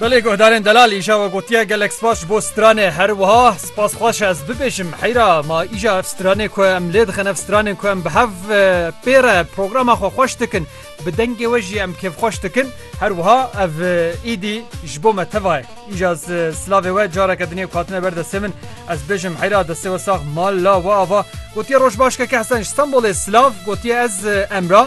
Belê guhdarên delal îşa we gotiye gelek spas ji bo stranê her wiha spas xweş ez bibêjim heyra ma îşa ev stranê ku em lê dixin ev stranên ku em bi hev pêre programa xwe xweş dikin bi dengê we jî em kêfxweş dikin her wiha ev îdî ji bo me teva ye îşa silavê we careke dinê ku hatine ber destê min ez bêjim heyra destê we sax mal la we ava gotiye roj baş ke kehsen ji stanbolê silav gotiye ez emra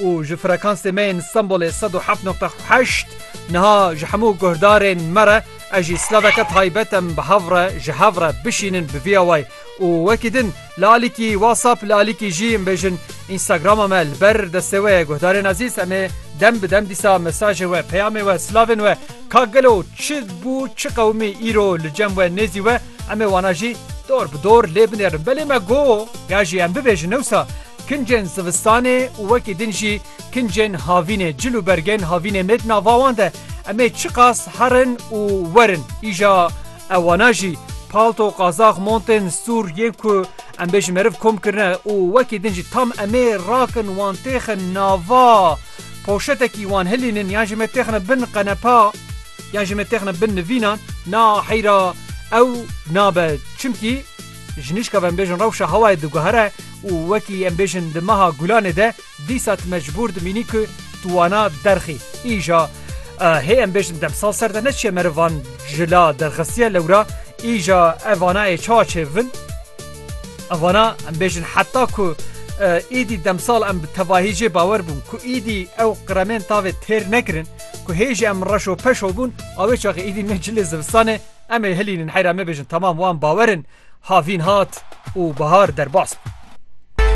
û ji frekansê me yên Stenbolê sed û heft noqte heşt niha ji hemû guhdarên me re ez jî silaveke taybet em bi hev re ji hev re bişînin bi vî awayî û wekî din li alîkî WhatsApp li alîkî jî em bêjin Instagrama me li ber destê we ye guhdarên ezîz em ê dem bi dem dîsa mesajê we peyamê we silavên we ka gelo çi bû çi qewimî îro li cem we nêzî we em ê wana jî dor bi dor lê binêrin belê me got ya jî em bibêjin newsa Kincên zivistanê û wekî din jî kincên havînê, cil û bergên havînê ne di nava wan de. Em ê çiqas herin û werin îja ew wana jî palto, qazax, montên stûr yên ku em bê ji meriv kom kirine û wekî din jî tam em ê rakin wan têxin nava poşetekî wan hilînin yan jî me têxine bin qenepa yan jî me têxine bin nivînan na heyra ew nabe çimkî Ji nişka ve em bêjin rewşa hewayê diguhere û wekî em bêjin di meha Gulanê de dîsa tu mecbûr dimînî ku tu wana derxî. Îja hê em bêjin demsal ser de ne çiye meriv van ji la derxistiye lewra îja ev vana ê çawa çêbibin. Ev vana em bêjin heta ku êdî demsal em bi tevahî jê bawer bûn ku êdî ew qiremên tavê têr nekirin ku hê jî em reşo peşo bûn awê çaxê êdî ne cilê zivistanê Em ê hilînin heyra me bêjin temam wan bawer in havîn hat û bahar derbas bû.